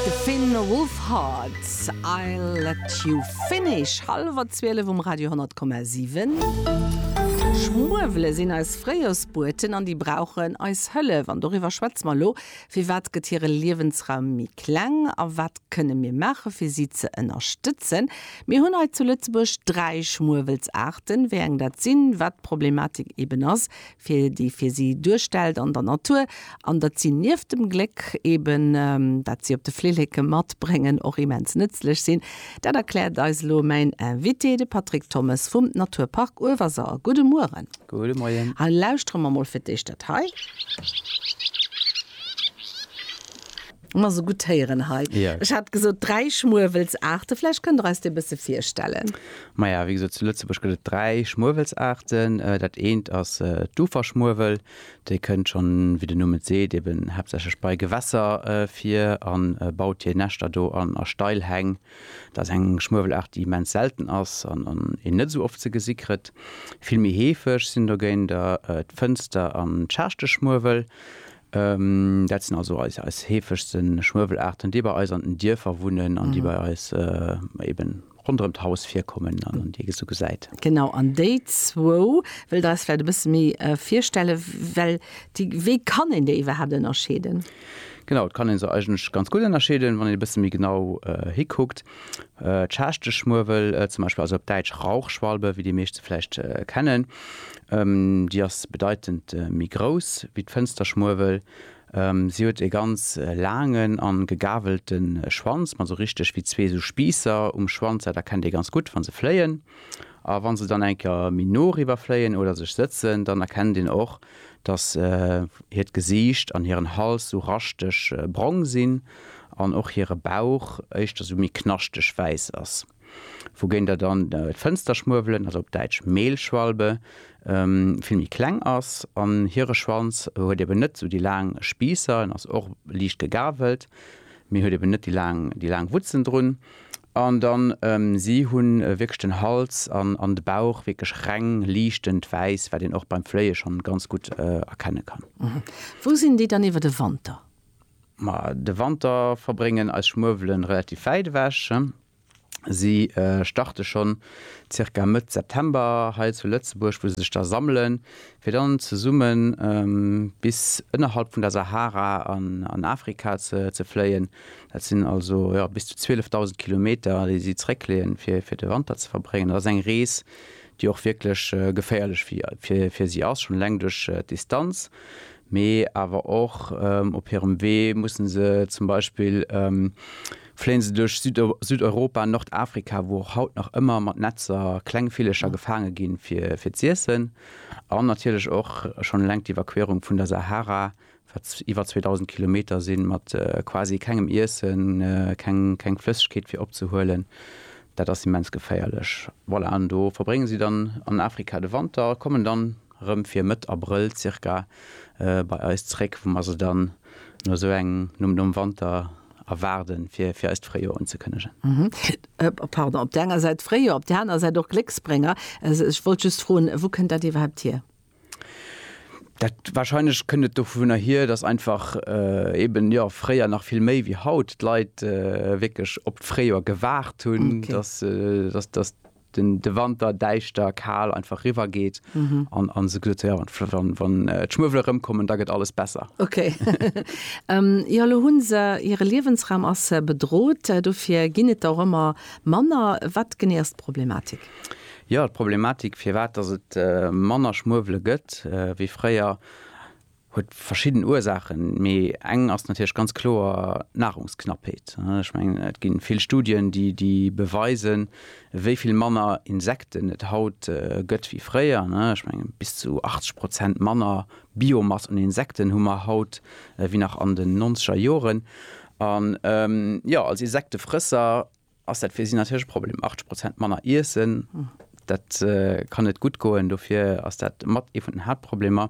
De Finn Wolfhard, I'll let you finish, hallwer 12 um Radio 100,7. Schmuewele sinn eis Fréijorsbueten an déi brauchen eis Hëllef. An doriwwer schwätze mer elo. Firwat gëtt hire Liewensraum méi kleng a wat kënne mir maache fir si ze ënnerstëtzen? Mir hunn hei zu Lëtzebuerg dräi Schmuewelsaarten. Wéi eng dat sinn, wat d'Problematik eeben ass, fir déi fir si duerstellt an der Natur, an datt si nieft dem Gléck eben, dat si op de Flilleke matbréngen, och immens nëtzlech sinn, dat erkläert eis elo mäin Invité, de Patrick Thommes vum Naturpark Uewerser. Gudde Mueren. Gudde Moien. Lauschteren mer mol fir d'éischt dat hei. Ma so gutt héieren hei. Ja. Ech hat gesot dräi Schmuewelsaarte, vläicht kënnt Der eis déi e bësse virstellen. Maja, wéi gesot, zu Lëtzebuerg gëtt et dräi Schmuewelsaarten. Dat eent ass d'Uferschmuewel. Déi kënnt schonn, wéi den Numm et seet, eben haaptsächlech bei Gewässer vir a baut hir Näschter do an a steil Häng. Dat ass eng Schmuewelaart, déi immens selten ass an een net esou oft ze gesi kritt. Vill méi heefeg sinn dogéint der d'Fënster an d'Schaarschtechschmuewel. Dat sinn also eis heefegste Schmuewelaarten, déi bei eis an den Dierfer wunnen an déi bei eis eben ronderëm d'Haus virkommen an déi ee sou gesäit. Genau, an déi zwou wëllt Der eis vläicht e bësse méi virstelle well. Wéi kann een déi iwwerhaapt ënnerscheeden? Genau, et kann ee se eigentlech ganz gutt ënnerscheeden, wann een e bësse méi genau hikuckt. D'Schaaschteschmuewel zum Beispill, also op Däitsch Rauchschwalbe, wéi déi meescht se vläicht kennen, Déi ass bedeitend méi grouss wéi d'Fënsterschmuewel. Si huet e ganz laangen a gegawelte Schwanz mat esou richteg wéi zwee esou Spiisser um Schwanz. Dat erkennt ee ganz gutt, wa se fléien. A wa se dann eng Kéier méi no eriwwer fléien oder sech sëtzen, dann erkennt een och, dass hiert Gesiicht an hiren Hals esou raschteg brong sinn an och hire Bauch éischter esou méi knaschteg wäiss ass. wougéint der dann d'Fënsterschmuewelen, also op Däitsch Mehlschwalbe, vill méi kleng ass. An hire Schwanz huet eben net esou déi laang Spiisser, en ass och liicht gegavelt, mee huet eben net déi laang, déi laang Wutzen drun. An dann si hunn wierklech den Hals an de Bauch wierklech reng liichtend wäiss, wat een och beim Fléie schonn ganz gutt erkenne kann. Wou sinn déi dann iwwer de Wanter? Ma de Wanter verbréngen eis Schmuewelen relativ wäit ewech. Si starte schonn zirka Mëtt September hei zu Lëtzebuerg, wou se sech da sammelen, fir dann zesumme bis ënnerhalb vun der Sahara an Afrika ze fléien. Dat sinn also bis zu 12.000 Kilometer, déi si zeréckleeën, fir de Wanter ze verbréngen. Dat ass eng Rees, déi och wierklech geféierlech fir si ass, schonn eleng duerch d'Distanz. mee awer och op hirem Wee mussen se zum Beispill fléien se duerch Südeuropa, Nordafrika, wou och haut nach ëmmer mat Netzer kleng Villecher gefaange ginn fir z'iessen, an natierlech och schonn eleng d'Evakuéierung vun der Sahara, wat iwwer 2.000 Kilometer sinn, mat quasi kengem Iessen, keng Flëssegkeet fir opzehuelen, dat ass immens geféierlech. Voilà, an do verbréngen si dann an Afrika de Wanter, kommen dann rëm fir Mëtt Abrëll zirka bei eis zréck, wou mer se dann no esou eng, nom, nom Wanter erwaarden, fir, fir eist Fréijoer unzekënnegen. Pardon, op där enger Säit Fréijoer, op där anerer Säit och Glécksbrénger. Ech wollt just froen, wou kënnt dat iwwerhaapt hier? Dat, wahrscheinlech kënnt et dovunner hier, dass einfach eeben, jo, fréier nach vill méi wéi haut, d'Leit wierklech op d'Fréijoer gewaart hunn, dass se, dass, dass de Wanter däischter, kal einfach riwwer geet an se gesot, jo wann d'Schmuewele rëmkommen, da gëtt alles besser. Ok. Jo elo hu se, hire Liewensraum ass bedrot, dofir ginn et der och ëmmer manner. Wat genee ass d'Problematik? Jo d'Problematik firwat datt et manner Schmuewele gëtt wéi fréier, Huet verschidden Ursaachen, mee eng ass natierlech ganz kloer d'Nahrungsknappheet. Ech mengen, et gi vill Studien, déi déi beweisen, wéi vill manner Insekten et haut gëtt wéi fréier. Ech mengen, bis zu 80 Prozent manner Biomass un Insekten hu mer haut wéi nach an den nonzeger Joren. An jo, als Insektefrësser ass dat fir si natierlech e Problem. 80 Prozent manner iessen, dat kann net gutt goen. Dofir ass dat mat ee vun den Haaptproblemer.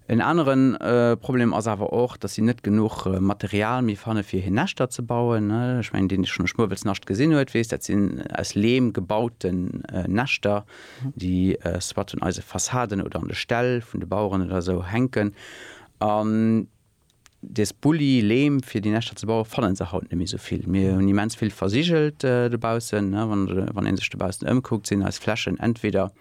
En anere Problem ass awer och, datt si net genuch Material méi fanne fir hir Näschter ze bauen. Ech mengen, deen dee schonn e Schmuewelsnascht gesinn huet, weess, dat sinn aus Leem gebauten Näschter, déi soit un eise Fassaden oder an de Ställ vun de Baueren oder esou hänken. Des Bulli, Leem fir déi Näschter ze bauen, fannen se haut net méi sou vill. Mir hunn immens vill versigelt dobaussen. Wann een sech dobaussen ëmkuckt, sinn eis Flächen entweder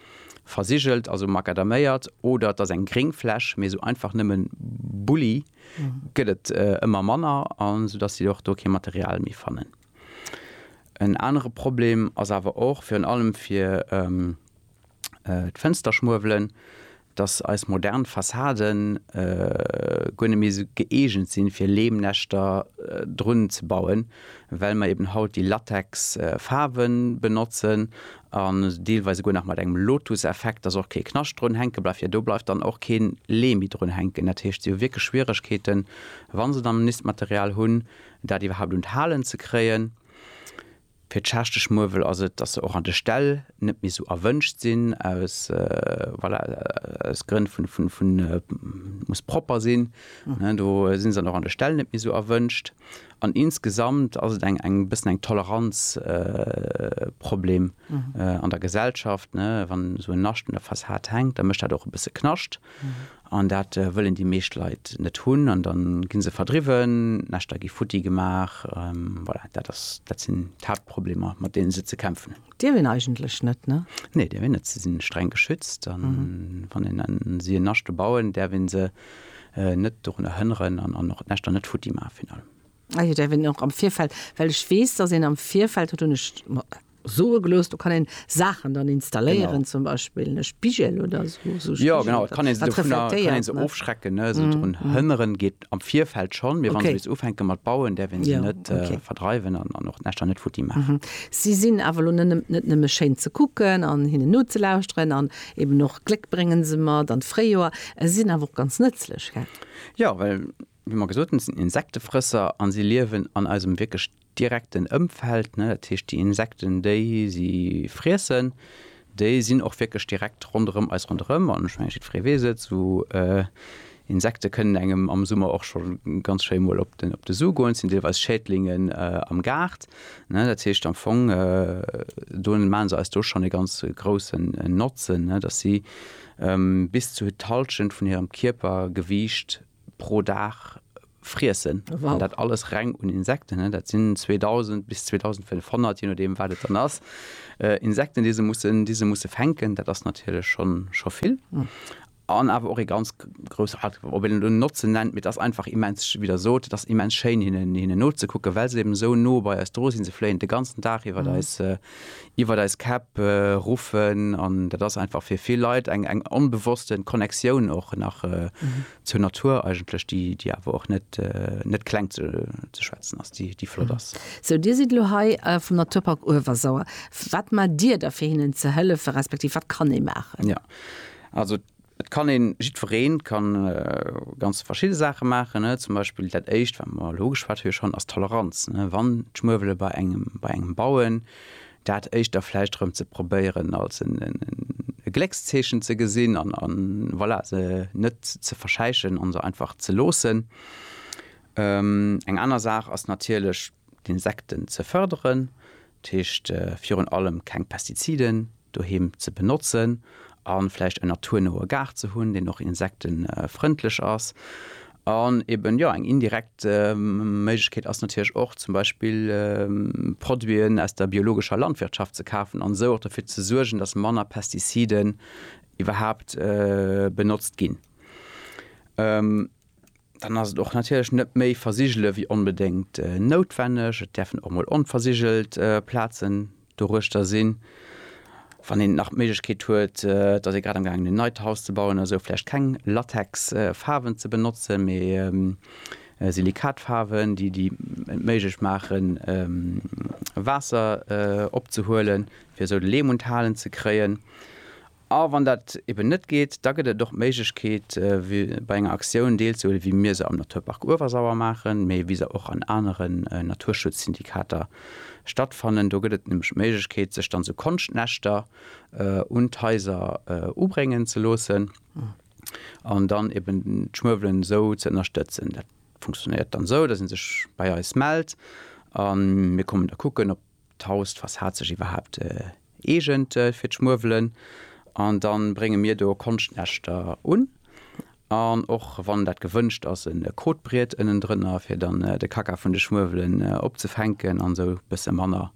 versigelt, also macadaméiert, oder et ass eng gréng Fläch. Mee sou einfach nëmmen Bulli gëtt et ëmmer manner, sou dass si och do kee Material méi fannen. En anere Problem ass awer och virun allem fir d'Fënsterschmuewelen. dass eis modern Fassaden guer net méi esou gëeegent sinn, fir Leemnäschter drun ze bauen, well mer eben haut déi Latex Faarwe benotzen an deelweis esouguer nach mat engem Lotus Effekt, dass och kee Knascht drun hänke bleift, jo do bleift dann och kee Leem méi drun hänken. Dat heescht, si hu wierklech Schwieregkeeten, wa se dann en Nistmaterial hunn, dat iwwerhaupt un d'Halen ze kréien. Fir d'Schaaschtegmuewel ass et, dass se och an de Ställ net méi esou erwënscht sinn, aus, voilà, aus Grënn vun, vun, vun, muss propper sinn, ne, do si se dann och an de Ställ net méi esou erwënscht. An insgesamt ass et eng, eng bëssen eng Toleranz, Problem an der Gesellschaft, ne. Wann esou en Nascht un der Fassad hänkt, da mécht dat och e bësse Knascht. An dat wëllen déi meescht Leit net hunn an da gi se verdriwwen, d'Näschter gi futti gemaach. Voilà, dat ass, dat sinn d'Haaptproblemer, mat deene se ze kämpfen hunn. Dierf een eigentlech net, ne? Nee, dierf een net. Se sinn streng geschützt a wann een an si en Naschte bauen, däerf ee se net dorunner hënneren an och d'Näschter net futti maachen, virun allem. Ah jo, dat wéll een och am Virfeld, well ech weess, dass een am Virfeld, dat hunn ech mer soe gelooss, do kann een Saachen dann installéieren, genau, zum Beispill e Spigel oder esou, esou Spigel, jo, genau, et kann een se dovunner, et kann een se ofschrecken, ne, esou drun hënneren geet am Virfeld schonn, mee wann se bis ufänke mat bauen, däerf een se net verdreiwen an och d'Näschter net futti maachen. Si sinn awer elo net nëmme schéin ze kucken an hinnen nozelauschteren an eben och Gléck bréngen se mat an d'Fréijoer, si sinn awer och ganz nëtzlech, gell? Jo, well Wéi mer gesot hunn, sinn Insektefrësser a si liewen an eisem wierklech direkten Ëmfeld. Dat heescht, déi Insekten, déi si friessen, déi sinn och wierklech direkt ronderëm eis ronderëm. An ech mengen, jiddweree weess et, esou Insekte kënnen engem am Summer och scho ganz schéi mol op de Su goen. Et sinn deelweis Schädlingen am Gaart. Dat heescht am Fong, do maache se eis do schonn e ganz groussen Notzen, datt si bis zu d'Hallschent vun hirem Kierpergewiicht, pro Dag friessen. Wow. An dat alles reng un Insekten, ne? Dat sinn 2000 bis 2500, je nodeem wat et dann ass, äh, Insekten, déi se mussen, déi se musse fänken. Dat ass natierlech schonn, scho vill. An awer och ee ganz grouss, ob een et elo Notzen nennt, mee et ass einfach immens, wéi Der sot, et ass immens schéin hinnen, hinnen nozekucken, well se eben esou no bei eis dru sinn. Se fléien de ganzen Dag iwwer eis, iwwert eis Käpp ruffen an dat ass einfach fir vill Leit eng eng onbewossten Connectioun och nach zur Natur eigentlech, déi déi awer och net net kleng ze ze schwätzen ass, déi déi flott ass. Sou Dir sidd elo hei vum Naturpark Uewersauer. Wat maacht Dir da fir hinnen ze hëllefen, respektiv wat kann ee maachen? Jo, also Et kann een, jiddwereen kann ganz verschidde Saachen maachen, ne? Zum Beispill dat éischt, wat mer elo geschwat hu schonn, ass d'Toleranz, ne? Wann d'Schmuewele bei engem, bei engem bauen, dat éischt da vläicht erëm ze probéieren als en, en, e Gléckszeechen ze gesinn an, an voilà, se net ze verschäichen an se einfach ze loossen. Eng aner Saach ass natierlech d'Insekten ze förderen, Dat heescht virun allem keng Pestiziden doheem ze benotzen a vläicht en naturnoe Gaart ze hunn, deen och insektefrëndlech ass. An eben, jo, eng indirekt Méiglechkeet ass natierlech och zum Beispill Produiten aus der biologescher Landwirtschaft ze kafen an esou och derfir ze suergen, datt manner Pestiziden iwwerhaapt benotzt ginn. dann ass et och natierlech net méi versigele wéi onbedéngt noutwenneg. Et däerfen och mol onversigelt Plazen doruechter sinn. Wann een nach d'Méiglechkeet huet, et ass ee grad am gaangen en neit Haus ze bauen oder sou, vläicht keng Latexfaarwen ze benotzen, mee Silikatfaarwen, déi et méiglech maachen Waasser opzehuelen, fir esou de Leem un d'Halen ze kréien. A wann dat eben net geet, da gëtt et och d'Méiglechkeet, bei enger Aktioun deelzehuelen, wéi mir se am Naturpark Uewersauer maachen, mee wéi se och an anere Naturschutzsyndikater stattfannen. Do gëtt et nämlech d'Méiglechkeet, sech dann esou Konschtnäschter un d'Haiser ubréngen ze loossen an dann eben d'Schmuewelen esou ze ënnerstëtzen. Dat funktionéiert dann esou, dass ee sech bei eis mellt a mir kommen da kucken, ob. D'Haus, d'Fassad sech iwwerhaapt eegent fir d'Schmuewelen an dann brénge mir do Konschtnäschter un an och wann dat gewënscht ass e Kotbriet ënnendrënner fir dann de Kacka vun de Schmuewelen opzefänken an esou bësse manner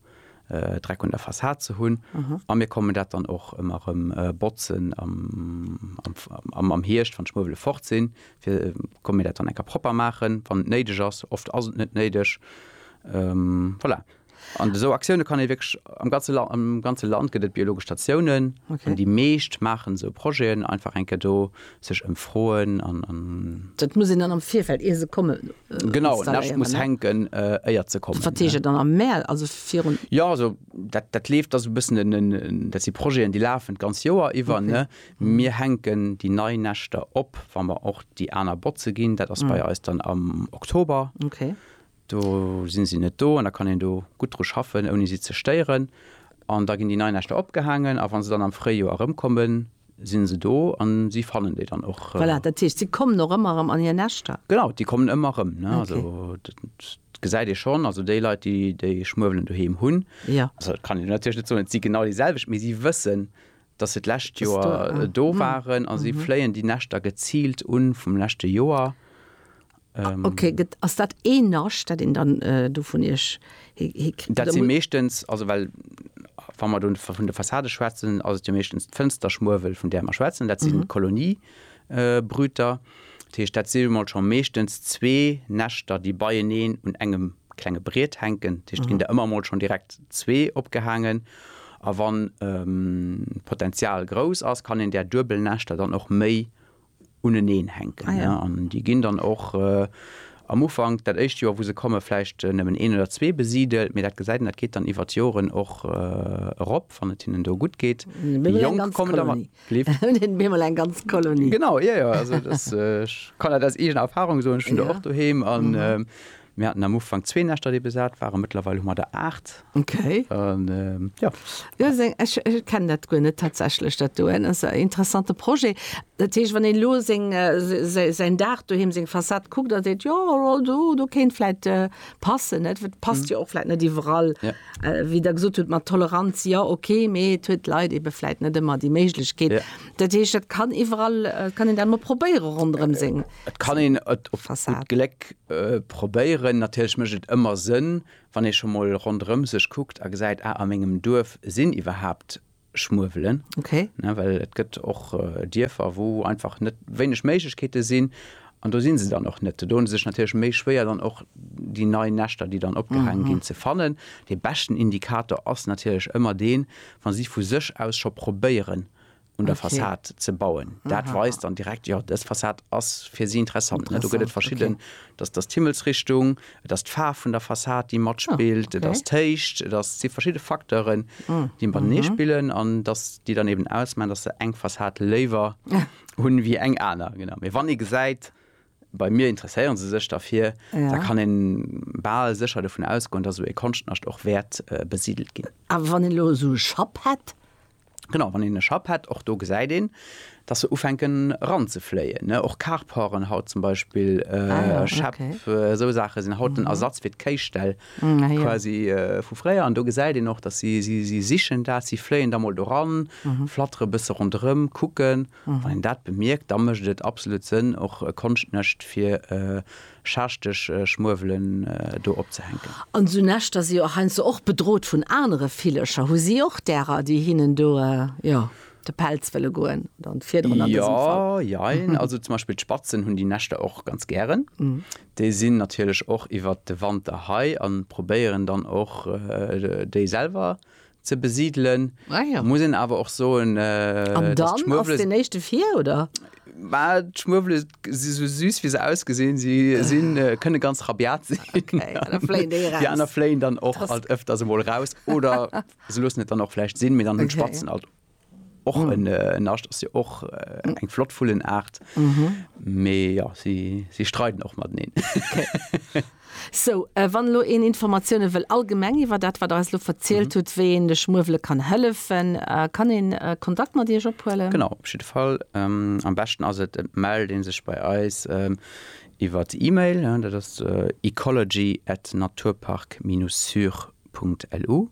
Dreck un der Fassad ze hunn a mir kommen dat dann och ëmmer rëm botzen am Hierscht wann d'Schmuewele fort sinn, fir komme mir dat dann enker propper maachen wann et néideg ass. Oft ass et net néideg Voilà. An esou Aktioune kann ee wierklech am ganze Land, am ganze Land gëtt et biologesch Statiounen. Okay. An déi meescht maachen esou Projeten, einfach eng Kéier do sech ëmfroen an. Dat muss een dann am Virfeld, ier se kommen, installéieren, ne? Genau, en Äscht muss hänken, éier se kommen. Wat heescht dat dann am Mäerz, also virun? Jo, also dat, dat leeft, dat ass e bëssen en, en, dat si Projeten, déi lafen d'ganz Joer iwwer, ne? Mir hänken déi nei Näschter op, wa mer och déi aner botze ginn, dat ass bei eis dann am Oktober. Okay. Do si si net do an da kann een do gutt dru schaffen, ouni si ze stéieren. An da ginn déi nei Näschter opgehaangen a wa se dann am Fréijoer erëmkommen, si se do a si fannen déi dann och. Voilà, dat heescht, si kommen och ëmmer erëm an hir Näschter? Genau, déi kommen ëmmer erëm. Also dat gesäit ee schonn, also déi Leit, déi déi Schmuewelen doheem hunn, also dat kann een natierlech net soen, et si genau déi selwecht, mee si wëssen, dass se d'lescht Joer do waren a si fléien déi Näschter geziilt un vum leschte Joer. Ok, ass dat een Nascht, dat een dann do vun iech hikritt? Dat si meeschtens, also well wa mer do vun de Fassade schwätzen, ass et jo meeschtens d'Fënsterschmuewel, vun där mer schwätzen. Dat sinn d'Kolonien, Brüter. Dat heescht, dat si jo mol scho meeschtens zwee Näschter, déi beieneen un engem klenge Briet hänken. Dat heescht, et ginn der ëmmer mol schonn direkt zwee opgehaangen. A wann d'Potenzial grouss ass, kann een där duebel Näschter dann och méi uneneen hänken. An déi ginn dann och am Ufank, dat éischt Joer, wou se komme vläicht nëmmen een oder zwee besidelt. Mee dat gesäit een, dat geet dann iwwer d'Joren och erop, wann et hinnen do gutt geet. Déi Jonk kommen dann. Lift. Hun een beemol eng ganz Kolonie. Genau, jo jo, also das, ech kann dat aus eegener Erfahrung soen, ech hun der och doheem an mir haten am Ufank zwee Näschter déi besat waren, mëttlerweil hu mer der 8. Okay. An jo. Jo, seng, ech kennen dat guer net tatsächlech dat doen, ass e interessante Projet. Dat heescht, wann een elo seng, säin Daach doheem, seng Fassad kuckt a seet, jo, do kéint vläit passen, net? Passt jo och vläit net iwwerall. Wéi Der gesot hutt mat Toleranz, jo okay, mee et huet d'Leit eebe vläit net ëmmer déi Méiglechkeet. Dat heescht, dat kann iwwerall, et kann een dat emol probéiere ronderëm seng Fassad. Et kann een et op gutt Gléck probéieren. Natierlech mécht et ëmmer Sënn, wann ee scho mol ronderëm sech kuckt a gesäit, ah, a mengem Duerf sinn iwwerhaapt schmuewelen, ne, well et gëtt och Dierfer, wou einfach net, wéineg Méiglechkeete sinn an do si se dann och net. Do hu se sech natierlech méi schwéier, dann och déi nei Näschter, déi dann opgehaange ginn, ze fannen. Dee beschten Indikator ass natierlech ëmmer deen, wa si vu sech aus scho probéieren, un der Fassad ze bauen. Dat weist dann direkt, jo, dës Fassad ass fir si interessant, ne. Do gëtt et verschidden, dass d'Himmelsrichtung, Et ass d'Faarf vun der Fassad, déi matspillt, et ass d'Héicht, et ass, et si verschidde Facteuren, déi matenee spillen an dass déi dann eben ausmaachen, dass se eng Fassad léiwer hunn wéi eng aner. Genau. Mee wann ee gesäit, bei mir interesséiere se sech derfir, da kann ee bal sécher dovun ausgoen, dass esou ee Konschtnascht och wäert besidelt ginn. Awer wann een elo esou e Schapp hätt? Genau, wann een e Schapp hätt, och do gesäit een, dass se ufänken eranzefléien. Och Carporten haut zum Beispill, Schäpp, esou Saache sinn haut den Ersatz fir d'Kéiställ quasi vu fréier. An do gesäit een och, dass si, si sichen dat, si fléien da mol do ran, flattere e bësse ronderëm, kucken. Wann een dat bemierkt, da mécht et absolut Sënn, och e Konschtnescht fir schachteg Schmuewelen do opzehänken. An esou Näschter si jo heiansdo och bedrot vun anere Villecher. Hu si och därer, déi hinnen do, jo, de Pelz wëlle goen oder an d'Fiederen an dësem Fall? Jo, jein. Also zum Beispill d'Spatzen hunn déi Näschter och ganz gären. Déi sinn natierlech och iwwert de Wanter hei a probéieren dann och déi selwer ze besidelen, ah, ja. muss een awer och soen äh, dann ass den echte vir oder war schmuwele si so süß wie se ausgesinn sie sinn äh, kënne ganz rabiat sinn okay, die aner fléien dann och alt öfters emol raus oder se lussen net dann auch flecht sinn mir dann hun okay. spatzen alt och mm. en nascht ass jo och äh, mm. eng flott vullen Art méi mm -hmm. ja, si, si streiten och mat neen. Okay. So äh, wann lo en Informatioune wëll allgemeng iwwer dat wat alles lo verzielt mm -hmm. huet, wéi en de Schmuewele kann hëllefen, äh, kann en äh, Kontakt mat Dir ophuelen. Genau op jiddwer Fall ähm, am beschten ass et et mell deen sech bei eis. Ähm, iwwer d'E-Mail, ja, dat ass äh, ecology@naturpark-sur.lu.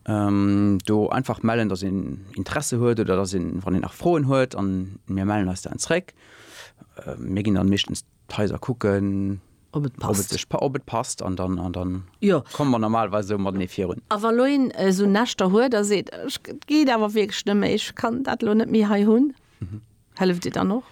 Do einfach mellen, datt een Interesse huet oder datt een, wann een nach Froen huet, an mir mellen eis dann zréck. Mir ginn dann meeschtens d'Haiser kucken, ob et passt, an dann komme mer normalerweis esou matenee virun. A wa lo een esou Näschter huet a seet, ech, et geet awer wierklech net méi, ech kann dat lo net méi hei hunn? Mhm. Helleft Dir dann och?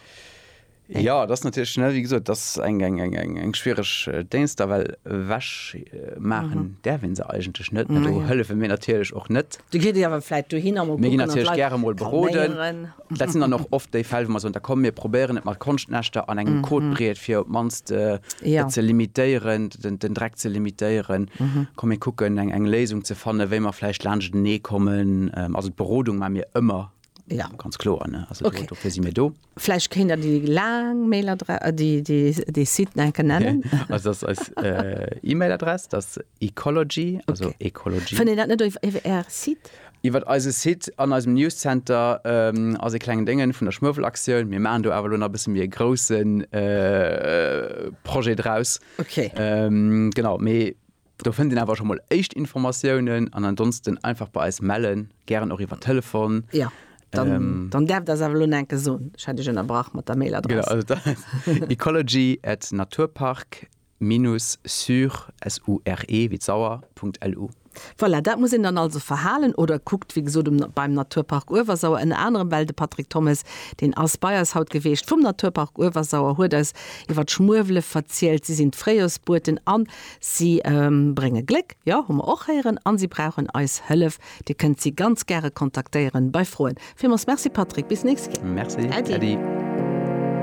Eng. Ja, dat ass natierlech, ne, wéi gesot, dat ass eng, eng, eng, eng, eng schwiereg äh, Déngschter, well ewech äh, maachen mhm. däerf een se eigentlech net. Mhm. Do hëllefe mir natierlech och net. Du gitt Dir awer vläit dohinner mol kucken. Mir ginn natierlech gäre mol beroden. Dat sinn dann och oft déi Fäll, wou mer soen, da komm mir probéieren et mat Konschtnäschter an engem mhm. Code breet, fir op d'mannst äh, ja. ze limitéieren, den, den Dreck ze limitéieren. Mhm. Komm mir kucken eng eng Léisung ze fannen, wéi mer vläicht laanscht nee kommen. Ähm, also d'Berodung ma mir ëmmer Ja. Ganz kloer ne also okay. dofir si mir do. Vläicht kéint der déi laang Mailadress äh, déi, déi, déi Site enke nennen. also das als äh, E-Mail-Adress das Ecology also okay. Ecology. Fënnt Dir dat net iwwer Är Site? Iwwer eise Site an eisem Newscenter ähm, as e klengen Déngen vun der Schmëwelaktioun. Mir machen do awer lo nach bësse mir grossen äh, Projet draus. Okay. Ähm, genau méi Do fënnt een awer scho mol éischt Informatiounen an ansonsten einfach bei eis mellen, gären och iwwer Telefon. Jo, dann däerft Dir eis awer elo nach eng Kéier soen, ech hat Iech ënnerbrach mat der Mailadress. Genau, also dat ass ecology at naturpark-sur, S-U-R-E wéi d'Sauer, Punkt LU. Voilà, dat muss een dann also verhalen oder kuckt, wéi gesot, um beim Naturpark Uewersauer, ënner anerem well de Patrick Thommes, deen ass bei eis haut geweecht, vum Naturpark Uewersauer, huet eis iwwer d'Schmuewele verzielt, si sinn d'Fréijorsbueten an Si brénge Gléck, jo, hu mer och héieren, a si brauchen eis Hëllef. Dir kënnt si ganz gäre kontaktéieren bei Froen. Villmools Merci Patrick, bis nächst Kéier. Merci Äddi.